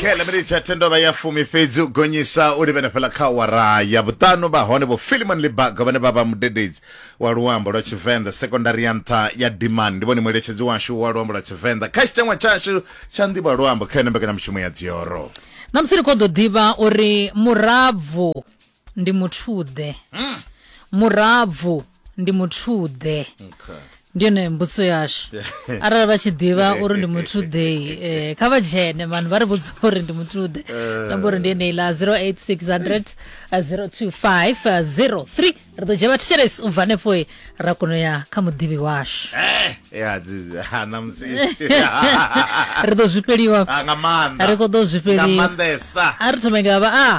kele minitsi ya tendova ya fumi fhedzi u gonyisa u livhene fhela kha awara ya vhuṱanu vha hone vho filimon libaga vhane vha vha mudededzi wa luambo lwa tshivenḓa sekondari ya nṱha ya dimani ndi vhone mueletshedzi washu wa luambo lwa tshivenḓa kha tshiteṅwa tshashu tsha nḓivha luambo kha yone mbekanyamushumo ya dzioro ṋamusi ri khou ḓo ḓivha uri murabvu ndi muthuḓe hmm. murabvu ndi muthuḓe okay. ndi yone mbudziso yashu arali vha tshi ḓivha uri ndi muthu ḓei eh, kha vha dzhene vanhu vha ri vhudza uri ndi muthu ḓe eh. namba uri ndi yeneila 08600 02503 ri ḓo dzhia vhathetshelesi u bva hanefho eh, ra kono ya kha muḓivhi washu ri ḓo zwifheliwa ah, ri khou ḓo zwifheliwa a ri thome nga vha a ah.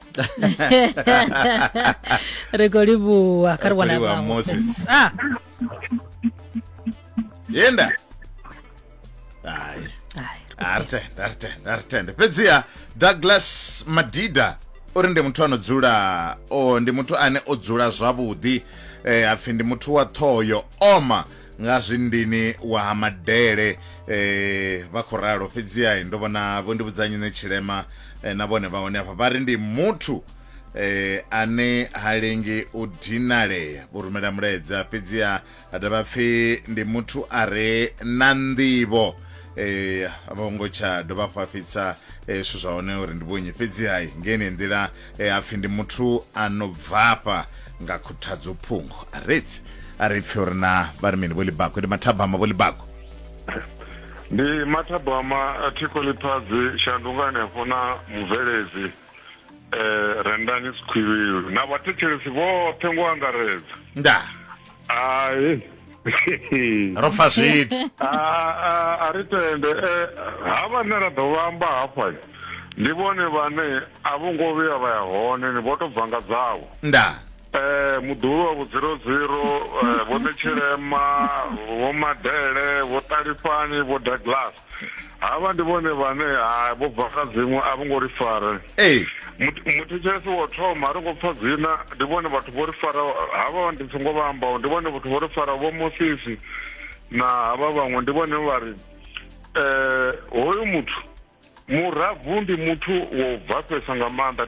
ri khou livhuwa kha ri wana Livhuwa vhaṅwe. Moses. Ah, yenda hayi hai. aritenda aritenda aritenda fhedziha douglas madida uri ndi muthu ano dzula o ndi muthu ane o dzula zwavhuḓi eh, apfhi ndi muthu wa ṱhoho yo oma nga zwindini wa ha madele eh, vha khou ralo fhedziha ndo vhona vho ndi vhudzanyi ne tshilema eh, na vhone vha hone afha vha ri ndi muthu eh, ane ha lengi u dinalea vho rumela mulaedza fhedziha a dovha pfhi ndi muthu a re na nḓivho eh, a vho ngo tsha dovha fhafhitsa eh, zwithu zwa hone uri ndi vhunyi fhedziha ngeni nḓila e a pfhi ndi muthu a no bvafha nga khuthadzo phungo a reti a ri pfhi uri na vha ri mini vho libako ndi mathabama vho libako ndi mathabama a thiko liphazi shandungani hafho na mubveledzi um rendani sikhwivhilu na vhathetshelesi vhoṱhe ngo angaredza ndaa hai ro fa zwithu a ri tende eh, ha vhane ra ḓo vhamba hafha ndi vhone vhane a vho ngo vhuya vha ya hone ni vho to bva nga dzavho nda eh muḓulu wa vhudziroziro eh, vho ṋetshilema vho madele vho ṱalifhani vho douglas havha ndi vhone vhane ha vho bva kha dziṅwe a vho ngo ri fare ee muthetshelesi wo thoma a ri ngo pfa dzina ndi vhone vhathu vho ri fara havha ndi songo vha ambaho ndi vhone vhathu vho ri fara vho mosisi na havha vhaṅwe ndi vhone vha ri um hoyu muthu murabvu ndi muthu wo bvafhesa nga maanḓa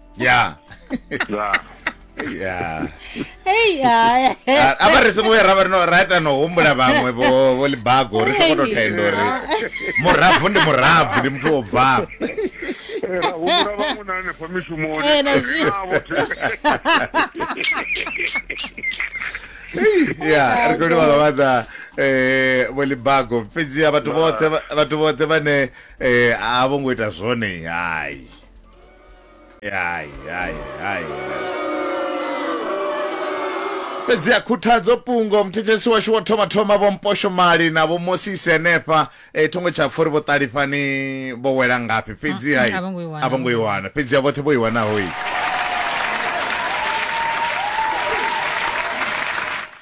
ya ya ya Hey, ya. Ah, a vha ri songo ya ra vha ri no ra ita no humbula vhaṅwe vho vho libago ri songo to tenda uri murabvu ndi murabvu ndi muthu wo bvaho ra humbula vhaṅwe na hanefha mishumoni Eh, na zwi- Navho thi- ya ri khou livha nga maanḓa eh, vho libago fhedzi a vhathu vhoṱhe vha- vhathu vhoṱhe vhane eh, a vho ngo ita zwone hai Hai, hai, hai. fhedzi a khuthadzo pungo muthetshelesi washu wo thoma thoma vho mposho mali na vho mosisi henefha e, thongo tsha pfori vho ṱalifhani vho wela ngafhi fhedzi hai a vho ngo i wana. a vho ngo i wana fhedzi a vhoṱhe vho i wanaho i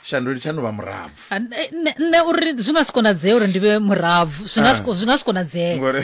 shandu litshani vha murabvu Ah, nṋe- nṋe nṋe uri zwi nga si konadzee uri ndi vhe murabvu zwi nga si ko- zwi nga si konadzee ngori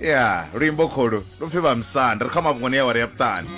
ya luimbo kholu lupfi vhamusanda ri kha mafhungoni ya wari ya vhuṱani